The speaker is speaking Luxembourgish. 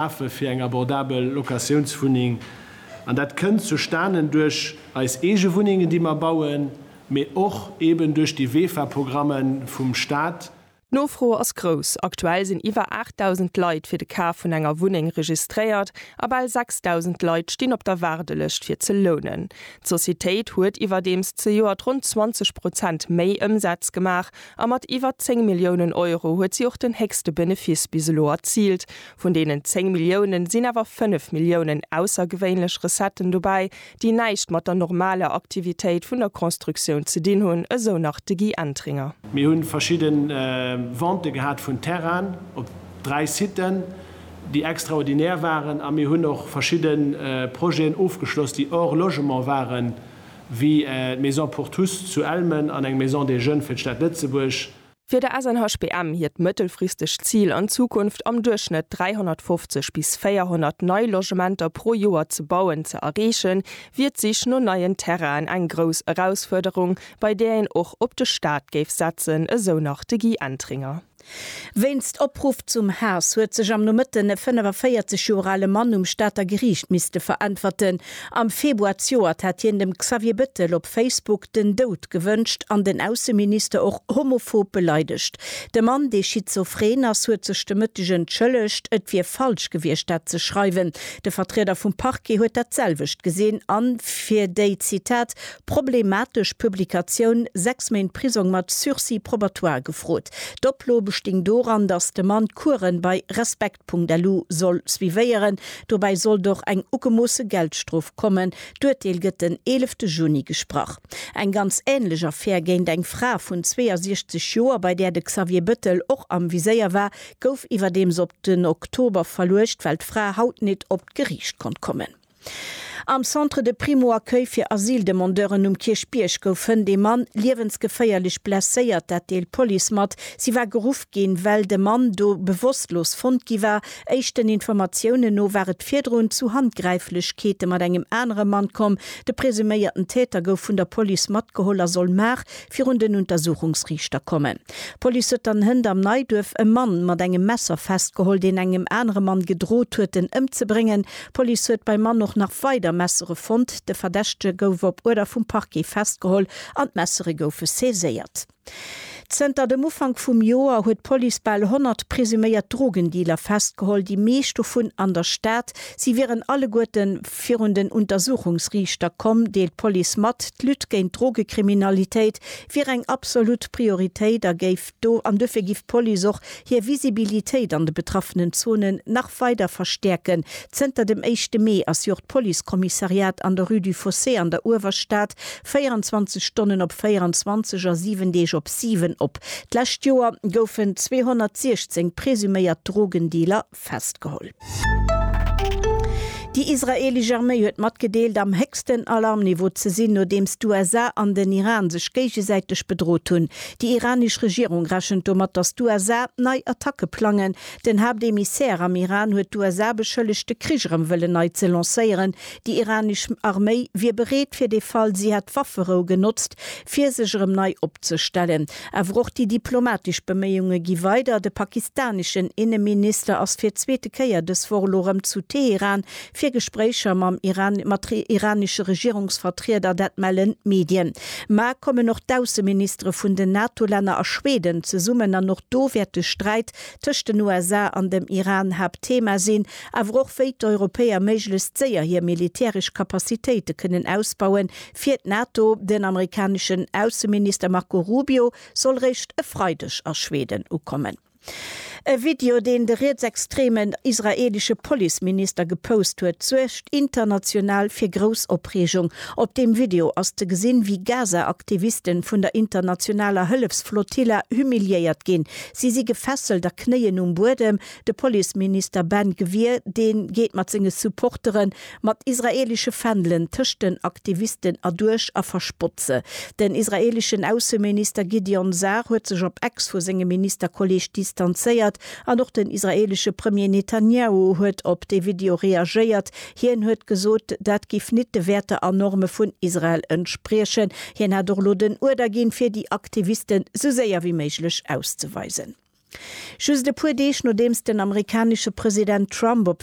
Affe fir eng abordabel Locatiounswunneng. An dat kënnt zustanen duerch eis eege Wunnengen, déi mer bauen, mee och eben duerch déi WEFA-Programme vum Stat. D'Nofro ass grouss. Aktuell sinn iwwer 8.000 Leit fir de Kaf vun enger Wunneng registréiert a bal 6.000 Leit stinn op der Waardelëscht fir ze lounen. D'Societéit huet iwwerdeems zejoert ronn 20 Prozent méi Ëmsaz gemaach A mat iwwer 10 Milliounen Euro huet si och den héchste Benefice bis elo erziilt. Vun deenen 10 Milliounen sinn awer 5 Milliounen aussergewéinlech Recetten dobäi, déi näischt mat der normaler Aktivitéit vun der Constructioun ze dinn hunn, esou nach de Guy Entringer. Mir hu verschidde Ventë gehat vun Terrainen op dräi Siten, déi extraordinär waren. A mir hunn och verschidde Projeten ofgeschloss, déi hors logement waren, wéi d'Maison pour tous zu Elmen an eng Maison des Jeunes fir d'Stad Lëtzebuerg. Fir de SNHBM hiert mëttelfristegt Zil, an Zukunft am Duerchschnëtt 350 bis 400 nei Logementer pro Joer ze bauen, ze erreechen, wier d'Sich no neien Terrainen eng grouss Erausfuerderung, bei där een och op de Staat géif setzen, esou nach de Guy Entringer. Wéinst Opruff zum Haass huet sech am Nomëtten e 45 Joer ale Mann um Stater Geriicht misste veräntwerten. Am Februar zjoert hat hien dem Xavier Bettel op Facebook den Doud gewënscht an den Ausseminister och homophob beleidegt. De Mann, dee schizophren ass, huet sech de Mëtteg entschëllegt, et wier falsch gewiescht dat ze schreiwen. De Vertrieder vum Parquet huet dat selwecht gesinn an fir déi, Zitat, problematesch Publikatioun, sechs Méint Prisong mat Sursis probatoire gefrot. D'Oplo besting doran, datt de Mann d'Kueren bei Respekt.lu soll suivéieren. Dobäi sollt och eng ugemoosse Geldstrof kommen. D'Urteel gëtt den eelefte Juni gesprach. Eng ganz änlech Affär géint eng Fra vun 62 Joer, bei där de Xavier Bëttel och am Viséier war, gouf iwwerdeems op den Oktober verluecht, well d'Fra haut nit op d'Geriicht konnt kommen. Am Centre de Primo-Accueil fir Asyldemandeuren um Kierchbierg gouf Hënt ee Mann liewensgeféierlech blesséiert, dat deelt d'Police mat. Si war geruff ginn, well de Mann do bewosstlos fonnt gi war. Éischten Informatiounen no war et virdrun zu Handgräiflechkeete mat engem anere Mann komm. De presuméierten Täter gouf vun der Police matgeholl a soll mar virun den Untersuchungsriichter kommen. D'Police huet dann Hënt am Neiduerf e Mann mat engem Messer festgeholl, deen engem anere Mann gedrot huet, en ëmzebréngen. D'Police huet beim Mann och nach weider Messere fonnt. De Verdächtege gouf op Uerder vum Parquet festgeholl an d'Messere goufe saiséiert. Zënter dem Ufank vum Joer huet d'Police bal 100 presuméiert Drogendealer festgeholl, déi meescht dovun an der Stad. Si wieren alleguerte virun den Untersuchungsriichter komm, deelt d'Police mat. D'Lutte géint d'Drogekriminalitéit wier eng absolut Prioritéit a géif. do an duerfir giff d'Police och hir Visibilitéit an de betraffenen Zonen nach weider verstäerken. Zënter dem éischte Mee ass jo och d'Policekommissariat an der Rue du Fossé an der Uewerstad 24 Stonnen op 24 a 7 Deeg op 7 op. D'lescht Joer goufen 216 presuméiert Drogendealer. festgeholl. Déi israeelesch Arméi huet matgedeelt, am héchsten Alarmniveau ze sinn, nodeems d'USA an den Iran sech géigesäiteg bedrot hunn. Déi iranesch Regierung rechent domat, datt d'USA nei Attacke plangen. Den Haaptemissaire am Iran huet d'USA beschëllegt, de Krich erëm wëllen nei ze lancéieren. Déi iranesch Arméi wier bereet, fir de Fall si hätt d'Wafferou genotzt, fir sech erëm nei opzestellen. Awer och déi diplomatesch Beméiunge gi weider. De pakistaneschen Inneminister ass fir d'zweete Kéier dës Woch elo erëm zu Teheran fir Gespréicher mam Iran, mat iranesche Regierungsvertrieder, dat mellen d'Medien. Ma kommen och d'Ausseministere vun den NATO-Länner a Schweden zesummen an och do wäert de Sträit tëscht den USA an dem Iran Haaptthema sinn. Awer och wéi d'Europäer méiglechst séier hir militäresch Capacitéite kënnen ausbauen, Fir d'NATO, Den amerikaneschen Ausseminister Marco Rubio soll réischt e Freideg a Schweden ukommen. E Video, deen de rietsextremen israeelesche Policeminister gepost huet, suergt international fir grouss Opreegung. Op deem Video ass ze gesinn, wéi Gaza-Aktivisten vun der internationaler Hëllefsflotilla humiliéiert ginn. Si si gefesselt a knéien um Buedem. De Policeminister Ben Gvir, dee geet mat senge Supportere Mat israelesche Fändelen tëscht den Aktivisten erduerch a verspott se. Den israeleschen Ausseminister Gideon Sar huet sech op Ex vu sengem Ministerkolleeg distanzéiert an och den israelesche Premier Netanjahu huet op dee Video reagéiert. Hien huet gesot, dat giff nit de Wäerter a Norme vun Israel entspriechen. Hien hätt och elo den Uerder ginn, fir déi Aktivisten sou séier wéi méiglech auszeweisen. Just e puer Deeg nodeems den amerikanesche President Trump op